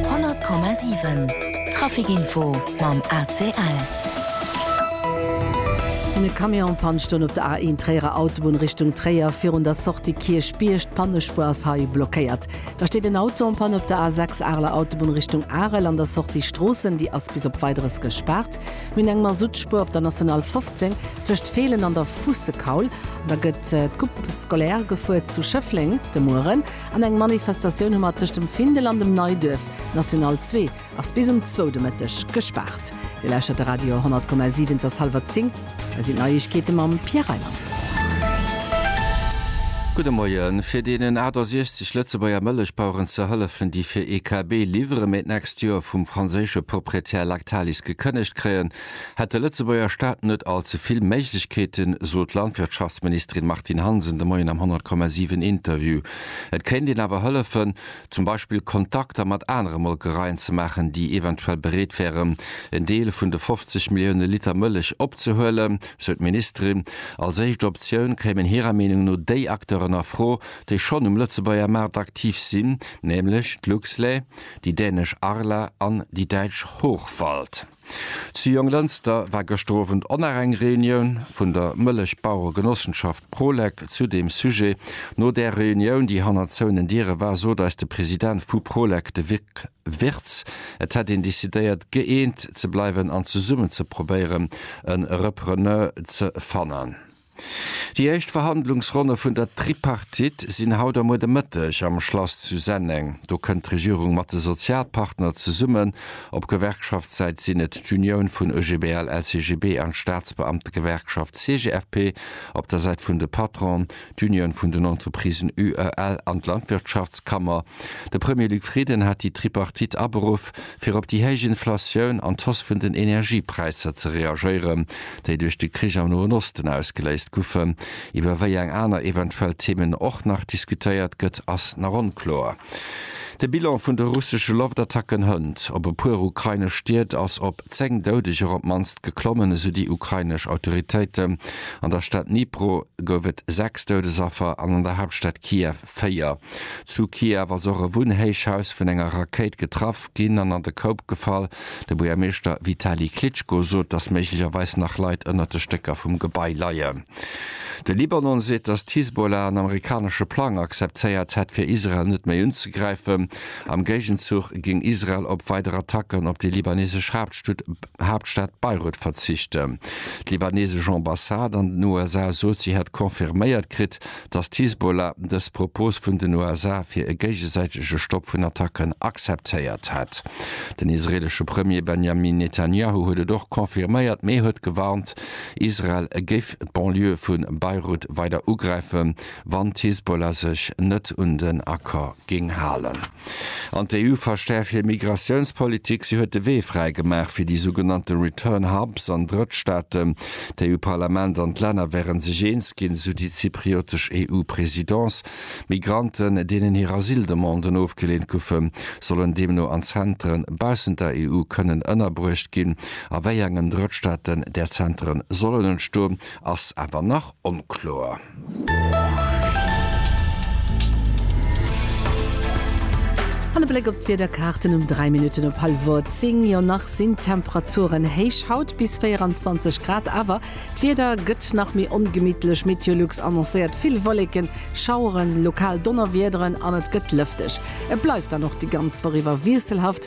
100,7 Trafic Info mam ACL. E Camion panscht un op der A1 Tréierer Autobunn Richtung Tréier virun der Sortie Kierchbierg. D'Pannespuer ass hei blockéiert. Da steet en Auto en Panne op der A6 Areler Autobunn Richtung Arel an der Sortie Stroossen. Déi ass bis op Weideres gespaart. Mir hunn eng Masuttspuer op der National 15 tëscht Feelen an der Fuussekaul. An da gëtt d'Coupe scolaire gefuer zu Schëffleng de Mueren. An eng Manifestatioun hu mer tëscht dem Findel an dem Neiduerf. D'National 2 ass bis um zwou de Mëtteg gespaart. Dir lauschtert de Radio 100,7. Et ass hallwer zéng. Hei sinn d'Neiegkeete mam Pierre Reimann. Gudde Moien. Fir deenen 68 Lëtzebuerger Mëllechbaueren ze hëllefen, déi fir EKB Livremednext Joer vum franséische Proprietär Lactalis gekënnegt kréien, hätt de Lëtzebuerger Staat net all ze vill Méiglechkeeten, sot d'Landwirtschaftsministerin Martine Hansen de Moien am 100,7 Interview. Et kéint een awer hëllefen, zum Beispill Kontakter mat anere Molkereien ze maachen, déi eventuell bereet wären, en Deel vun de 50 Millioune Liter Mëllech opzehuelen, sou d'Ministerin. Als éischt Optioun kéimen hirer Meenung no déi Acteuren a Fro, déi schonn um Lëtzebuerger Maart aktiv sinn, nämlech d'Luxlait, déi dänesch Arla an déi däitsch Hochwald. Zu Jonglënster war gëschter Owend oner eng Reunioun vun der Mëllechbaueregenossenschaft Prolec zu deem Sujet. No där Reunioun, déi hannert zouenen Diere war, sot eis de President vu Prolec, de Vic Wirtz, et hätt een decidéiert, gëeent ze bleiwen an zesummen ze probéieren, e Repreneur ze fannen. Déi éischt Verhandlungsronne vun der Tripartite sinn haut a muer de Mëtteg am Schlass zu Senneng. Do kënnt d'Regierung mat de Sozialpartner zesummen. Op Gewerkschaftssäit sinn et d'Unioun vun OGBL-LCGB an d'Staatsbeamtegewerkschaft CGFP, op der Säit vun de Patronen d'Unioun vun den Entreprisen UEL an d'Landwirtschaftskammer. De Premier Luc Frieden hat déi Tripartite aberuff, fir op déi héich Inflatioun an d'Hausse vun den Energiepräisser ze reagéieren. déi duerch de Krich am Noen Osten ausgeléist guffen. Iwwer wéi eng aner eventuell Themen och nach diskutéiert gëtt, ass nach onkloer. De Bilan vun de russesche Loftattacken hënt op e puer ukrainesch Stied ass op 10 Doudeger op d'mannst geklommen, esou déi ukrainesch Autoritéiten. An der Stad Dnipro gouf et 6 Doudesaffer an an der Haaptstad Kiew 4. Zu Kiew ass och e Wunnhéichhaus vun enger Rakéit getraff ginn an an de Koup gefall. De Buergermeeschter Vitali Klitschko sot, datt méiglecherweis nach Leit ënnert de Stécker vum Gebai leien. De Libanon seet, datt d'Hisbollah en amerikanesche Plang akzeptéiert hätt, fir Israel net méi unzegräifen. Am Géigenzuch géing Israel op weider Attacken op déi libanesesch Haaptstad Beirut verzichten. D'libanesesch Ambassade an den USA sot, si hätt confirméiert kritt, datt d'Hisbollah dës Propos vun den USA fir e géigesäitege Stopp vun Attacken akzeptéiert hätt. Den israeelesche Premier Benjamin Netanjahu huet et och confirméiert, mee huet gewarnt, Israel géif d'Banlieue vu Beirut weider ugräifen, wann d'Hisbollah sech net un den Accord géing halen. An d'EU verstäerft hir Migratiounspolitik. Si huet de Wee fräi gemaach fir déi sougenannte Return Hubs an Drëttstaaten. D'EU-Parlament an d'Länner wären sech eens ginn, esou déi zypriotesch EU-Presidence. Migranten, deenen hir Asyldemanden ofgeleent goufen, sollen deemno an Zentere baussent der EU kënnen ënnerbruecht ginn. A wéi engen Drëttstaaten där Zentere sollen entstoen, ass awer nach onkloer. An e Bléck op d'Wiederkaarten um 3 Minutten op hallwer 10. Jo nach sinn d'Temperaturen héich, haut bis 24 Grad, awer d'Wieder gëtt nach méi ongemittlech. Meteolux annoncéiert vill Wolleken, Schaueren, lokal Donnerwiederen an et gëtt lëfteg. Et bleift dann och déi ganz Woch iwwer wiesselhaft.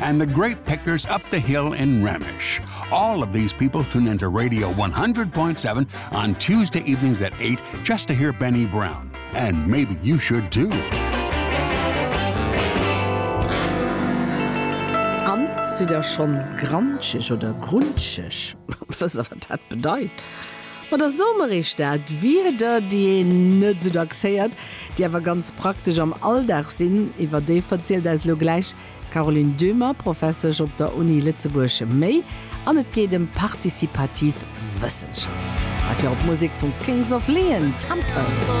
And the grape pickers up the hill in Ramesh. All of these people tune into Radio 100.7 on Tuesday evenings at 8 just to hear Benny Brown. And maybe you should too. An si der schon grantschech oder grunschech was dat bedeit. Ma der Somerich dat wie der die net so dacks héiert, die awer ganz praktisch am Alldag sinn, iwwer déi verzielt eis lo gläich Caroline Döhmer, Professesch op der Uni Lëtzebuerg, Méi an et geet ëm participativ Wëssenschaft. Hei fir op d'Musek vum Kings of Leon, Temple.